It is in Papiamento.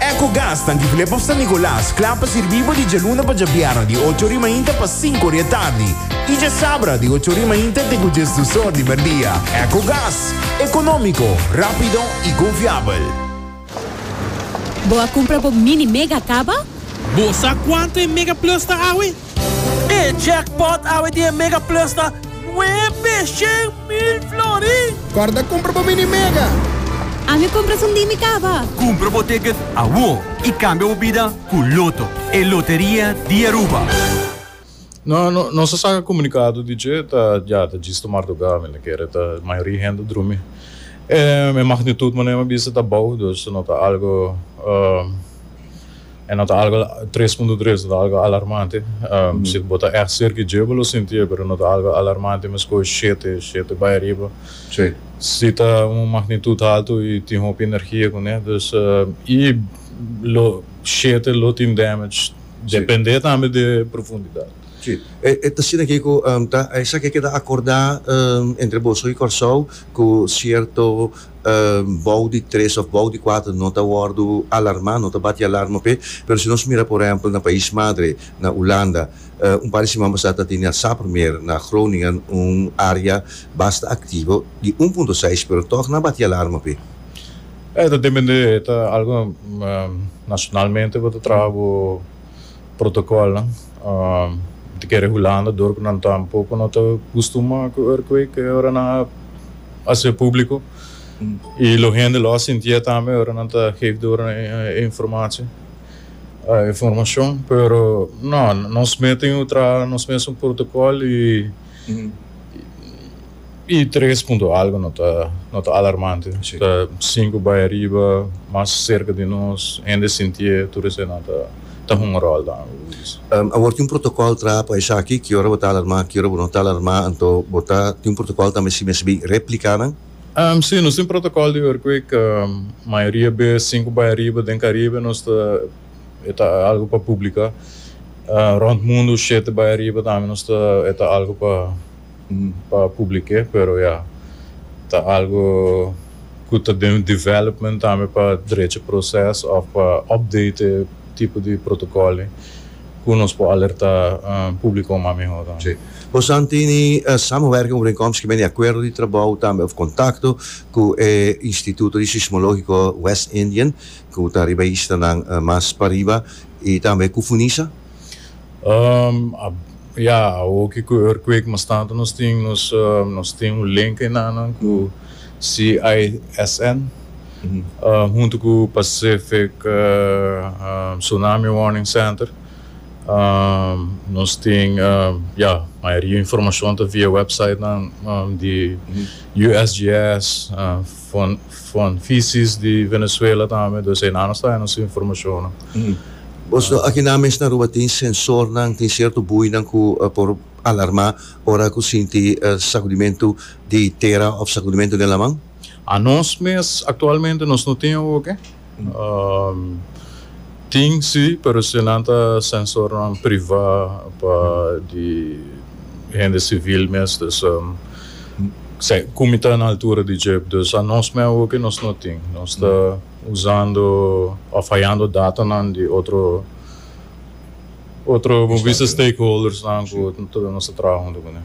Ecogas ta Antigulé pa San Nicolas, kla pa sirbí bo di djaluna pa djabierna di ocho ori mainta pa sinku ori e tardi i djasabra di ocho ori mainta te ku djes dus or di merdia. Ecogas, ekonómiko, rápido i konfiabel. Bo a kumpra bo Mini Mega kaba? Bo sa kuantu e Mega Plus ta awe? E jackpot awe di e Mega Plus ta nuebe shen mil florin! Corda cumpra bo mini Mega! Ami cumpra sundi mi caba! Cumpra bo ticket awor y cambia bo bida cu Lotto, e loteria di Aruba! No, nos a saca comunicado di dje ta ya ta djis tomar tu gami, na kere ta mayoria hende a drumi. E magnitud, manera mi a bisa, ta bou, dus no ta algo. E no ta algo tres punto tres, no ta algo alarmante. Si bo ta ègt serka dje bo lo sintié, pero no ta algo alarmante meskos shete, shete bai ariba. Si ta un magnitut haltu i tin hopi energia kuné, dus i lo shete lo tin damage, dependé tambe di e profundidat. Si, e ta asina ke ku ta esaki a keda akordá entre boso i Kòrsou ku sierto bou di tres of bou di kuater no ta wordu alarma no ta bati alarma p'e pero si nos mira por ehempel na pais madre na Ulanda un par di siman pasá ta tene a sa promé na Groningen un area basta aktivo di un punto seis pero tog na bati alarma p'e. E ta dependé ta algo nacionalmente bo ta traha bo Protocolnan ta kere hulanda dor cu nan tampoco no ta custuma cu earthquake ora nan a haci'e publico y lo hende lo a sinti'e tambe ora nan ta geef door e informatie, e informacion. Pero no, nos mey tin un traha nos mes un protocol y I tres punto algo no ta no ta alarmante. Ta sinku bai ariba, mas serka di nos, hende sintié, tur esei nan ta ta hunga ròl dan, hu bo disi. Awor tin un protokòl traha pa esaki, ki ora bo ta alarmá, ki ora bo no ta alarmá, anto bo ta tin un protokòl tambe si mes bin repliká nan? Sí, nos tin protokòl di earthquake, mayoria bes sinku bai ariba, den Karibe nos ta e ta algu pa publiká, rònt mundu shete bai ariba tambe nos ta e ta algu pa. pa publike pero ya ta algo cu ta den development tambe pa drecha proces of pa update e tipo di protocolnan cu nos por alerta publico mas mihor tambe. Si. Bosan tin e samenwerking overeenkomst kimen e acuerdo di trabou tambe of contacto cu e Instituto di Sismologico West Indian cu ta riba e islanan mas pariba y tambe cu Funisa? Um, a, ya, awor ke ku e earthquake mas tantu nos tin, nos, um, nos tin un link enanan ku CISN, um, huntu ku Pacific, um, Tsunami Warning Center. Um, nos tin, um, ya, mayoria informashon ta via websitenan, um, di USGS, um. Fon fisis di Venezuela tambe dos enan nos ta hay nos informacionnan. Bos no aki nan mes na Aruba tin sensornan, tin cierto buinan cu por alarma ora cu sinti sacudimentu di tera of sacudimentu den laman? Anos mes actualmente nos no tin awo oke. Tin si, pero si nan ta sensornan privá pa di hende sivil mes, dus kumi ta na altura di djip. Dus anos mei awoke nos no tin. Nos ta usando òf hayando datanan di otro otro, bo bisa, stakeholdersnan ku nos ta traha huntu ku nan.